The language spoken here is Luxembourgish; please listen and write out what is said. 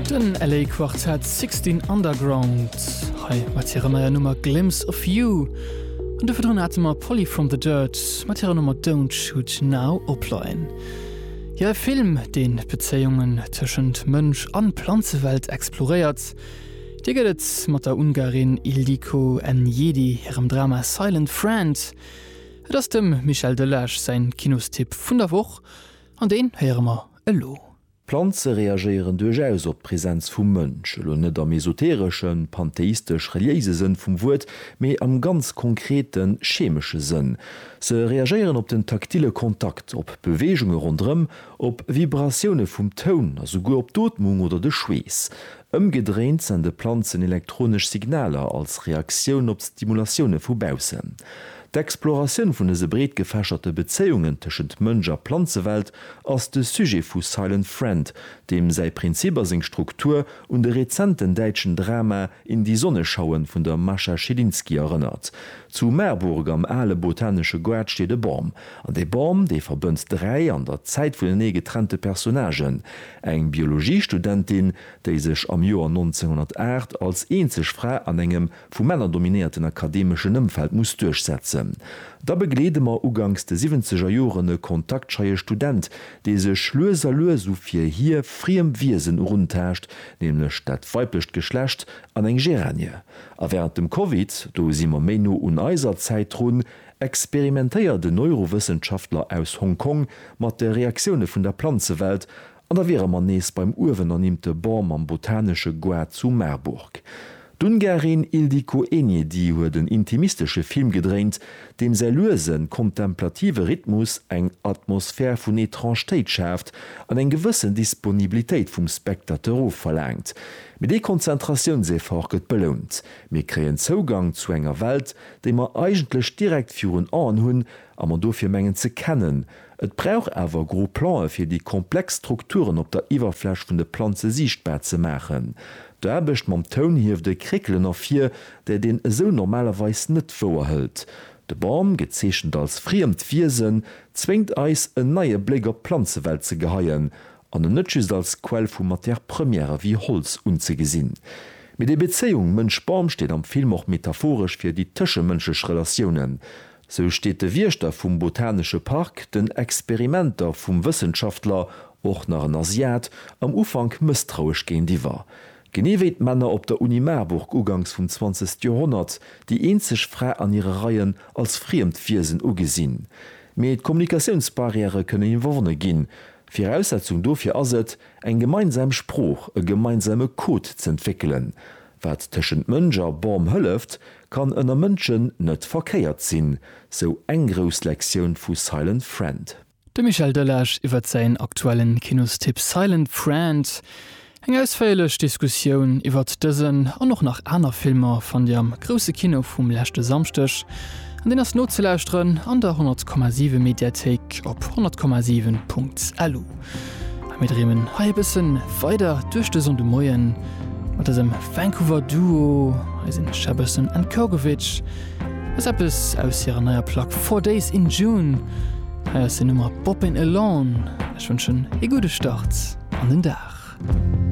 Den LA Quartet Sixteen Underground hei mat hirer neier Nummer Glimpse of You. An du verdrun hate mer Polly from the Dirt mat hirer Nummer Don't Shoot Now opleien. Hir e Film, deen d'Bezéiungen tëschent Mënsch an Planzewelt exploréiert. Dir gëtt et mat der Ungarin Ildiko Enyedi hirem Drama Silent Friend. Et ass dem Michel Delage säin Kinostipp vun der Woch an deen héiere mer elo. Planze reagéieren duerchaus op d'Präsenz vum Mënsch, elo net am esotereschen, pantheistesch-reliéise Sënn vum Wuert, mee am ganz konkreten, chemesche Sënn. Se reagéieren op den taktile Kontakt, op Beweegunge ronderëm, op Vibratioune vum Toun a souguer op d'Ootmung oder de Schweess. Ëmgedréint sende Planzen elektronesch Signaler als Reaktioun op d'Stimulatioune vu baussen. D'Exploratioun vun dëse breetgefächerte Bezéiungen tëschent Mënsch a Planzewelt ass de Sujet vu Silent Friend, deem säi Prinzip a seng Struktur un de rezenten däitschen Drama In die Sonne schauen vun der Mascha Schilinski erënnert. Zu Marburg am ale botanesche Goart steet e Bam. An dee Bam, dee verbënnt dräi an der Zäit vunenee getrennte Personnagen, eng Biologiestudentin, déi sech am Joer 1908 als eenzeg Fra an engem vu Männer dominéierten akademeschen Ëmfeld muss duerchsetzen. Da begleede mer uganks de siwwenzeger Joren e kontaktscheie Student, dee sech lues a lues u fir hie friem Wiesen eruntaascht, nämlech dat weiblecht Geschlecht, an eng Géranie. A wärend dem Covid, do si mer méi no un eiser Zäit drun, experimentéiert en Neurowëssenschaftler aus Hong Kong mat de Reaktioune vun der Planzewelt An da wiere mer nees beim uewen ernimmte Bon mam botanesche Goart zu Marburg. D'Ungarin Ildiko Enyedi huet en intimistesche Film gedréint, deem säi luesen, kontemplative Rhythmus eng Atmosphär vun Etrangtéit schaaft an eng gewëssen Disponibilitéit vum Spectateur ofverlaangt. Mee dee Konzentratiounseffort gëtt belount, mir kréien Zougang zu enger Welt, déi mer eigentlech direkt virun Aen hunn a mer dofir mengen ze kennen, Et brauch awer gro Plan'e fir déi komplex Strukturen op der Iwwerfläch vun de Planze siichtbar ze maachen. D'Aarbecht mam Toun hieft e Kréckelen ervir, dat een esou normalerweis net wouerhëlt. De Bam, gezeechent als friemt Wiesen, zwéngt eis en neie Bléck op d'Planzewelt ze geheien an en net just als Quell vu Matière Première wéi Holz unzegesinn. Mee déi Bezéiung Mënsch-Bam steet am Film och metaphoresch fir déi tëschemënschlech Relatiounen. Sou steet de Wiechter vum botanesche Park den Experimenter vum Wëssenschaftler, och nach en Asiat, am Ufank mësstrauesch géintiwwer. Genee wéi d'Männer op der Uni Marburg ugangs vum zwanzegste Joerhonnert déi eenzeg Fra an hire Reien als friemt Wiesen ugesinn. Mee d'Kommunikatiounsbarrièrë kënnen iwwerwonne ginn. Viraussetzung dofir ass et, eng gemeinsam Sprooch, e gemeinsame Code z'entwéckelen. Wat tëschent Mënsch a Bom hëlleft, kann ënner Mënschen net verkéiert sinn, sou eng grouss Lektioun vu Silent Friend. De Michel Delage iwwert säin aktuellen Kinostipp Silent Friend. Eng ausféierlech Diskussioun iwwert dësen an och nach aner Filmer fannt Dir am Grousse Kino vum leschte Samschdeg an deen ass nozelauschteren an der 100,7 Mediathéik op 100,7.lu. A mir dreemen hei e bëssen weider duerch de Sonnde Moien mat dësem Vancouver Duo. Hei sinn Shabason and Kogovich. Dat ass eppes aus hirer neier Plack Four Days in June. Hei ass den Nummer Boppin' Alone. Ech wënschen ee gudde Start an den Dag.